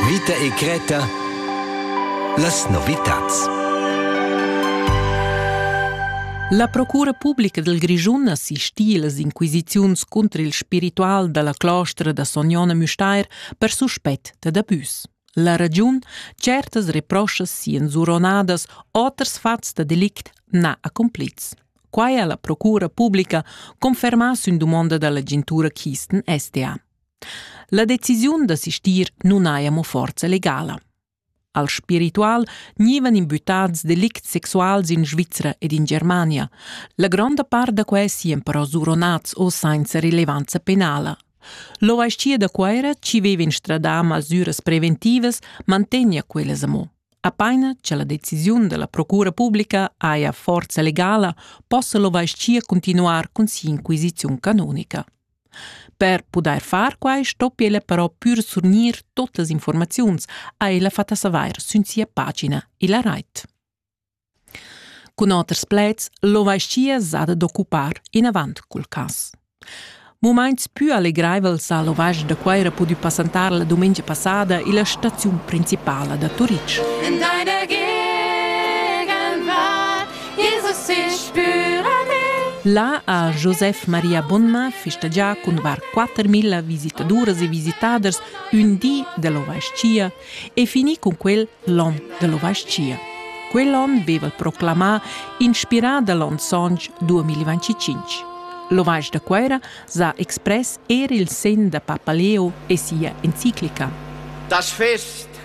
Vita e Greta Las novitads La procura publica del Grischun assistì las inquisiziuns contro il spiritual dalla clostra da Sognona Müstair per suspett dad abüs. La ragiun, certas reproschas sian zuronadas, oters fats da delict na accomplits. Quai ha la procura publica confermà sün dumonda dall'agentura Kisten SDA. La decisiun da sistir nun haja mo forza legala. Al spiritual gnivan imbuttads delicts sexuals in Svizra ed in Germania. La gronda part da quai sian però suronats o sainza rilevanza penala. L'ovaschia da Cuera, ci veva instradà masüras preventivas, mantegna quellas amo. Apaina che la decisiun della Procura Pubblica haja forza legala, possa l'ovaschia continuar cun si'inquisiziun canonica. Per pudair far quai stoppi ella però pür surgnir totas informaziuns, ha ella fat a savair sün sia pagina illa rait. Cun oters pleds, lo vaschia zad d'occupar inavant cul cas. Mumaints pü allegraivels ha l'ovage da Cuaira pudü passantar la dumengia passada illa staziun principala da Turitg. In deine Gegenwart Il russis La ha Josef Maria Bonnma festegià cun var 4.000 visitaduras e visitaders ün di dell'ovais-chia e finì cun quel l'on dell'ovais-chia. Quell'on veva proclamà, inspirà da l'on sontg 2025. L'ovais da Cuera s'ha express er il sen da Papa Leo e sia enciclica. Das Fest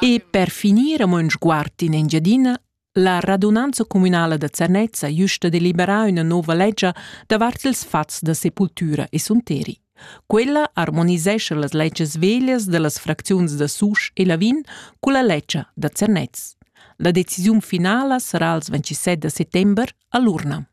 E per finir amo ün sguard in Engiadina, la radunanza communala da Zernez ha güsta deliberà üna nouva legia davart ils fats da sepultura e sunteri. Quella armonisescha las legias veglias da las fracziuns da Susch e Lavin culla legia da Zernez. La decisiun finala sarà als 27 da settember a l'urna.